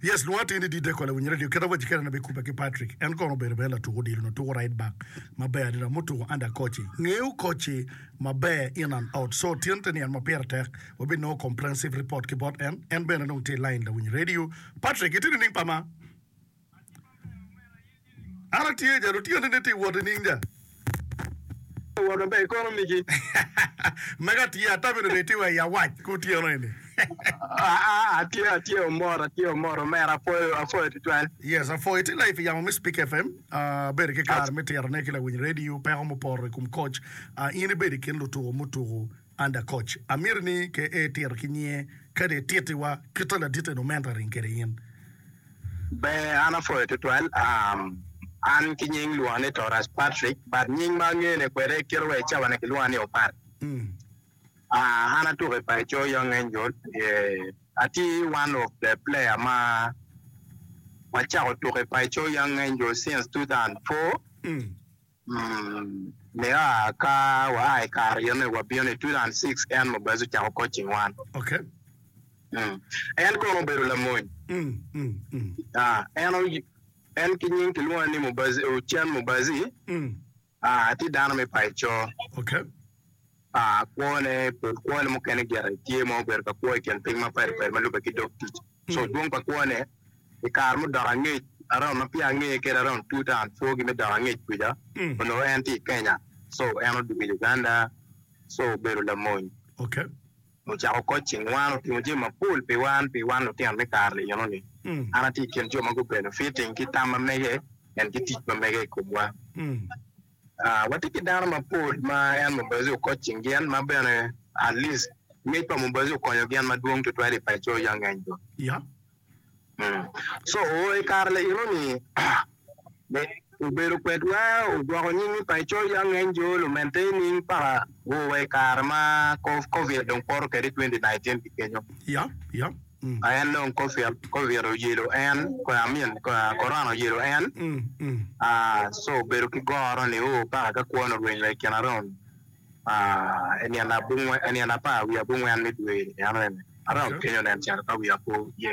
Yes, lwongo atir ni didde kole winyo radio. Keta waci kerane be kubbe ki Patrick. En kono obedo bene latuk odilo nyo tuko right back maber adada mutuko under Kochi. Ngeyo Kochi maber in and out. So tyen te ni en ma pire tek wabinongo comprehensive report ki bot en. En bene dong tye i line lawiny radio. Patrick, iti nining pama? An atye ca, lutyeni ni tye wot nining ca? Wot maber, ikono migi. Magi atye, ata bene reti wa i awac kutyeno eni. Atye, atye omoro, atye omoro omera, apwoyo, apwoyo tutwal. Yes, apwoyo. Itye live i yamo me Speak FM. Abedo ki kare me titone ki lawiny radio, peko muporo i kom koc. In ibedo i kin lutuko mutuku. Under coach amiri ni ke e tiro ki nyinge kadi e titi wa kita ladite no mento aring kede in. Ber an apwoyo tutwal um an ki nying lwonga ni Torras Patrick but nying ma angene kwede kite wa icawane kilwonga ni Opat um an atuko i paco Young Angel um atye one of the player ma wacako tuko i paco Young Angel since two thousand four. Mea ka waa i kare yone wabino i 2006 en Mobazi ocako coaching wan. En kono obedo lamony. En en ki nying kilwonge ni Mobazi, Ocen Mobazi. Tye dano me paco. pa kwone, pol kwone mukene gire tye ma obedo ka kwo i tyen piny mapadi padi ma lubbe ki dog tic. So dwong pa kwone i kare mudok angec around ma peya angeye kede around two thousand four gi me dok angec kwica, onongo en tye i Kenya. So en odwogo i Uganda, so obedo lamony. Ocako coaching wan, otimo jami mapol pi wan, pi wan lutino me kare-ni enoni. An atye i kin jo ma gubenefiting ki tam ma mege and ki tic ma mege i komwa. Watye ki dano mapol ma en Mubazi okot cing gin, ma bene at least ngec pa Mubazi okonyo gin madwong tutwal i paco ya ngeny do ya so i kare laino ni obedo kwedwa ogwoko nying ni paco ya ngeny jo lumente ining paka o wa i kare ma covid dong poto kede twenty nineteen ki kenyo ya ya. a en dong covid oyelo en I mean corona oyelo en a so obedo ki goro ni oo paka ka kwone orwenyo wa ikine aromo nino apar wiye abongwen me dwe ni enoni aromo kenyo nen calo ka wiya pe oye.